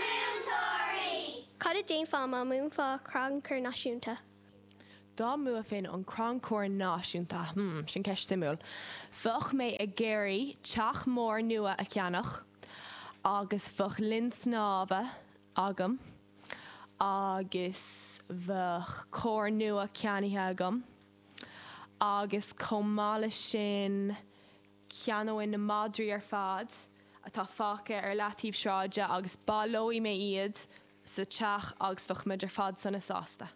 múinteoirí. Cad a déanfá má mbuafá an crannchur náisiúnta? Dá mbuafainn an crannchur náisiúnta, hmm, sin ceist suimiúil. Bheadh mé ag iarraidh teach mór nua a cheannach agus bheadh linn snámha agam agus bheadh carr nua ceannaithe agam agus chomh maith leis sin, Ceannóinn na madraí ar fad atá fágtha ar leataobh sráide agus baileoidh mé iad sa teach agus bheadh muid ar fad sona sásta.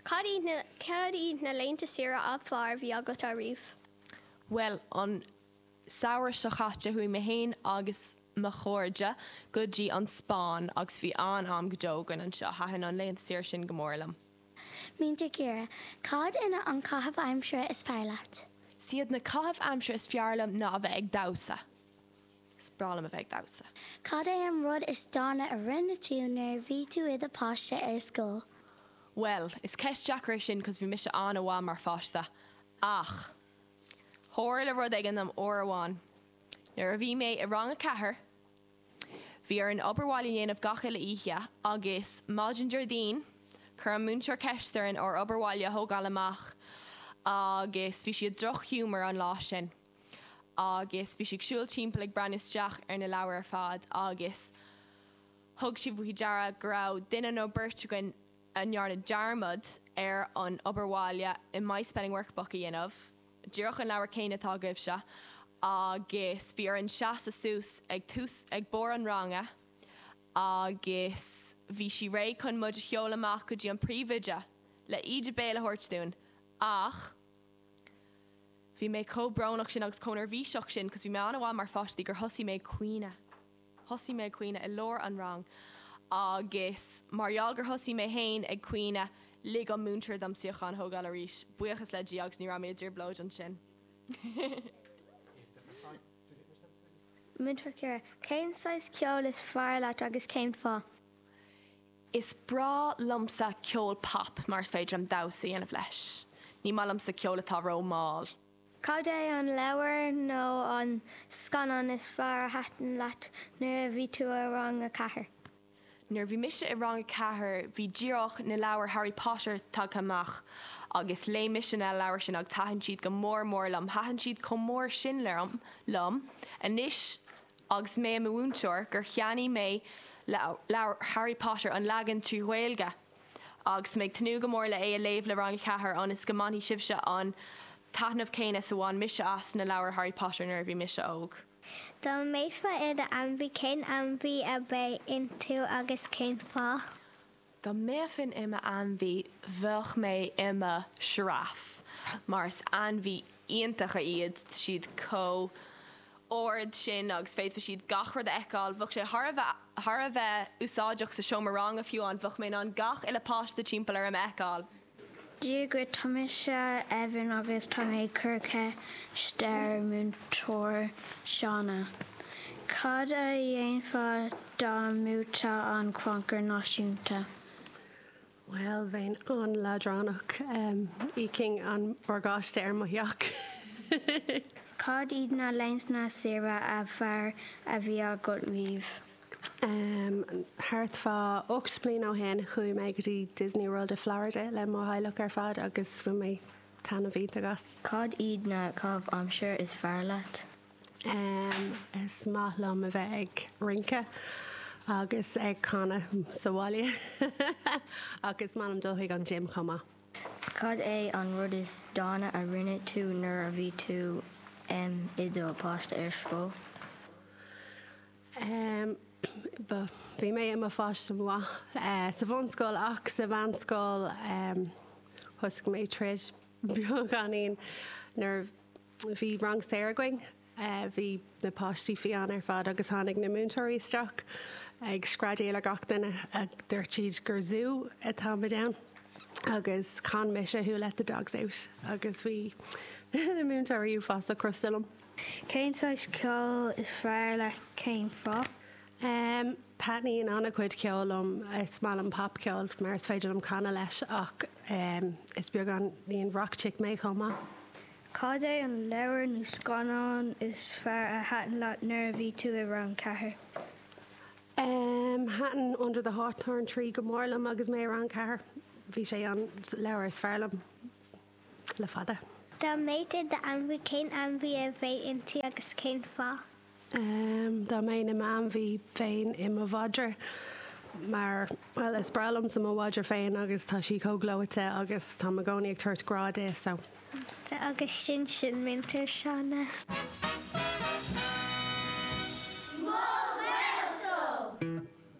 Cad iad na laethanta saoire ab fearr a bhí agat ariamh? Bhuel, an samhradh seo caite chuaigh mé féin agus mo chairde go dtí an Spáinn agus bhí an-am go deo againn anseo. Thaitin an laethanta saoire sin go mór liom. Múinteoir Ciara, cad iad na caitheamh aimsire is fearr leat? Siad na caitheamh aimsire is fearr liom ná a bheith ag damhsa. Is breá liom a bheith ag damhsa. Cad é an rud is dána a rinne tú nuair a bhí tú i do pháiste ar scoil? Bhuel, is ceist deacair é sin cos bhí mise an-mhaith mar pháiste. Ach, tharla rud éigin liom uair amháin nuair a bhí mé i rang a ceathair, Bhí orainn obair bhaile a dhéanamh gach uile oíche agus maidin Déardaoin, chuir an múinteoir ceist orainn ár obair bhaile a thógáil amach agus bhí sí i droch-ghiúmar an lá sin agus bhí sí ag siúl timpeall ag breathnú isteach ar na leabhair ar fad agus thug sí faoi deara go raibh duine nó beirt againn a ndearna dearmad ar an obair bhaile i My Spelling Workbook a dhéanamh. díreach an leabhar céanna atá agaibhse agus bhí orainn seasadh suas ag tús, ag barr an ranga agus bhí sí réidh chun muid a sheoladh amach go dtí an príomhoide le íde béil a thabhairt dúinn ach bhí mé chomh brónach sin agus chomh neirbhíseach sin cos bhí mé an-mhaith mar pháiste gur thosaigh mé ag caoineadh. Thosaigh mé ag caoineadh i lár an rang agus mar gheall gur thosaigh mé féin ag caoineadh, lig an múinteoir dom suíochán a thógáil arís, buíochas le Dia, agus ní raibh mé i dtrioblóid ansin. Múinteoir Ciara, Cén saghas ceoil is fearr leat agus cén fáth? Is breá liomsa ceol pop mar is féidir liom damhsa a dhéanamh leis. Ní maith liomsa ceol atá ró-mall. Cad é an leabhar nó an scannán is fearr a thaitin leat nuair a bhí tú i rang a ceathair? Nuair a bhí mise i rang a ceathair, bhí díreach na leabhair Harry Potter tagtha amach agus léigh mise na leabhair sin agus thaitin siad go mór mór liom. Thaitin siad chomh mór sin liom anois agus mé i mo mhúinteoir gur cheannaigh mé leabhair Harry Potter, an leagan trí Ghaeilge, Agus mé ag tnúth go mór le é a léamh le Rang 4 ionas go mbainfidh sibhse an taitneamh céanna is a bhain mise as na leabhair Harry Potter nuair a bhí mise óg. Dá mbeifeá i do ainmhí, cén ainmhí a bheadh ionat agus cén fáth? Dá mbeifinn i m'ainmhí, bheadh mé i mo giraffe mar is ainmhí iontacha iad, siad chomh. ard sin agus féadfaidh siad gach rud a fheiceáil. Bheadh sé thar a bheith úsáideach sa seomra ranga fiú ann, bheadh mé in ann gach uile páiste timpeall orm a fheiceáil. Dia dhuit, tá mise Evan agus tá mé ag cur ceiste ar Múinteoir Shauna. Cad a dhéanfá dá mbuaiteá an Crannchur Náisiúnta? Bhuel, bheinn an-leadránach, íocfainn an morgáiste ar mo theach. Cad iad na laethanta saoire ab fhearr a bhí agat riamh? Thart fá ocht mbliana ó shin, chuaigh mé go dtí Disney World i Florida le mo theaghlach ar fad agus bhain mé taitneamh iontach as. Cad iad na caitheamh aimsire is fearr leat? Is maith liom a bheith ag rince agus ag canadh sa bhaile ach is maith liom dul chuig an gym chomh maith. Cad é an rud is dána a rinne tú nuair a bhí tú i do páiste ar scoil? Bhí mé i mo pháiste mhaith sa bhunscoil ach sa mheánscoil thosaigh mé éirí beagáinín nuair a bhí. Bhí rang saor againn. Bhí na páistí fiáin ar fad agus tháinig na múinteoirí isteach ag screadaíl ar gach duine. Dúirt siad gur zú a táimid ann agus chan mise Who Let The Dogs Out agus bhí na múinteoirí uafásach crosta liom. Cén saghas ceoil is fearr leat? Cén fáth? Taitníonn an-chuid ceoil liom. Is maith liom popcheol mar is féidir liom canadh leis ach is beagánín rock chick mé chomh maith. Cad é an leabhar nó scannán is fearr a thaitin leat nuair a bhí tú i rang ceathair? Thaitin Under the Hawthorn Tree go mór liom agus mé i rang ceathair. Bhí sé an leabhar is fearr liom le fada. Dá mbeadh tú i d'ainmhí, cén ainmhí a bheadh ionat agus cén fáth? Dá mbeinn i m'ainmhí bheinn i mo mhadra, mar, bhuel, is breá liomsa mo mhadra féin agus tá sí chomh gleoite agus táim i gcónaí ag tabhairt grá di, so. Agus sin sin Múinteoir Shauna. Mo Ghaelscoil!